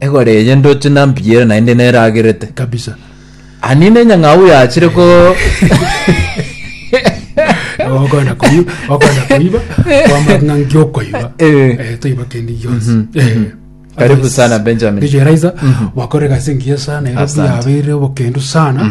Egori eye ndoche na mpiere naende neragerete. kabisa Ani nenyang'au yachire ko okona koiba okona koiba kwamang'a ngiokoiba Eh. Eh, toiba kende gionsi Mhm. Eh. Mhm. Karibu sana, Benjamin. Ndicho Eliza wakore gase ngiya sana Nairobi Asante. yabeire obokendo sana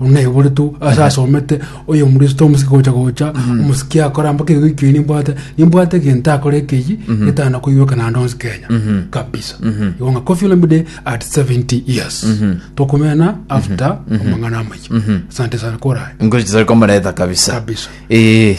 Onaiboretwe ase asomete oyomristo omosike gocha gocha omosike akoramba kegogo ekio nimbwate nimbwate egento akore ekeyie getana koiroka naende onsi kenya kabisa igo ng'a Koffi Olomide at 70 years tokomena after amang'ana amayia asante sana korae Ngochi zari komareta kabisa. Kabisa. Eh.